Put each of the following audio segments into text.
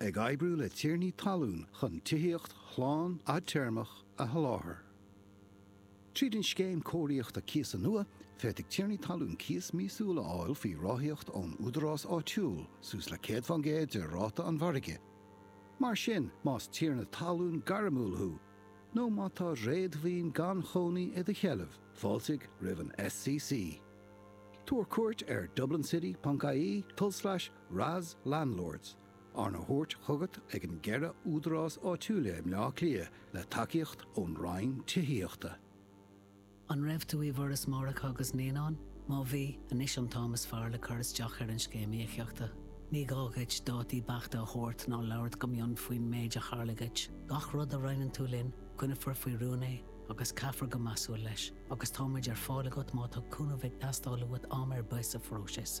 Ag oibriú le tiarnaí talún chun tithíocht shlán fhadtéarmach a sholáthar. Tríd an Scéim Cóiríochta Cíosa nua, féadfaidh tiarnaí talún cíos míosúil a fháil faoi ráthaíocht ón údarás áitiúil, suas le 100 fán gcéad de ráta an mhargaidh. Mar sin, más tiarna talún gairmiúil thú nó má tá réadmhaoin gan chónaí i do sheilbh, fáiltigh roimh an SCC. Tabhair cuairt ar dublincity.ie, tulslais RAS Landlords, arna thabhairt chugat ag an gceithre údarás áitiúila i mBleá Cliath le tacaíocht ón Roinn Tithíochta. An raibh tú i bhForas Máithreacha agus Naíonán? Má bhí, anois an t-am is fearr le cur isteach ar an Scéim Íocaíochta. Ní gá dhuit dátaí beachta a thabhairt ná labhairt go mion faoin méid a tharla dhuit. Gach rud a roinneann tú linn, coinneofar faoi rún é agus caithfear go measúil leis, agus tá muid ar fáil agat má tá cúnamh ag teastáil uait am ar bith sa phróiseas.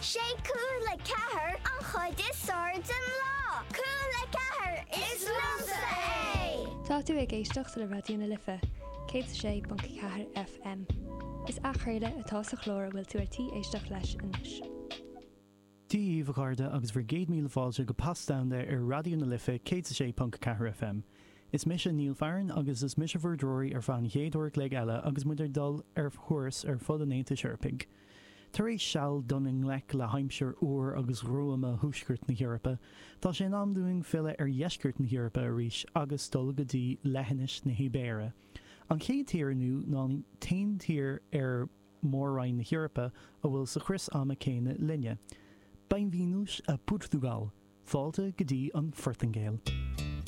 Sé cúl a ceathair an chuid is airde den lá. Cúl a ceathair, is liomsa é! Tá tú ag éisteacht le Raidió na Life, 106.4 FM. Is athchraoladh atá sa chlár a bhfuil tú ar tí éisteacht leis anois. Dia daoibh a chairde agus bhur gcéad míle fáilte go Pas Domhanda ar Raidió na Life 106.4 FM. Is mise Neil Farren agus is mise bhur dtreoraí ar feadh an chéad uair a chloig eile agus muid ag dul ar thuras ar fud an Aontais Eorpaigh. Tar éis seal dul i ngleic le haimsir fhuar agus ghruama Thuaisceart na hEorpa, tá sé in am dúinn filleadh ar Dheisceart na hEorpa arís agus dul go dtí Leithinis na hIbéire. An chéad tír inniu ná an t-aon tír ar Mhór-Roinn na hEorpa a bhfuil sa chrios ama céanna linne. Bem-vindos a Portugal! Fáilte go dtí an Phortaingéil!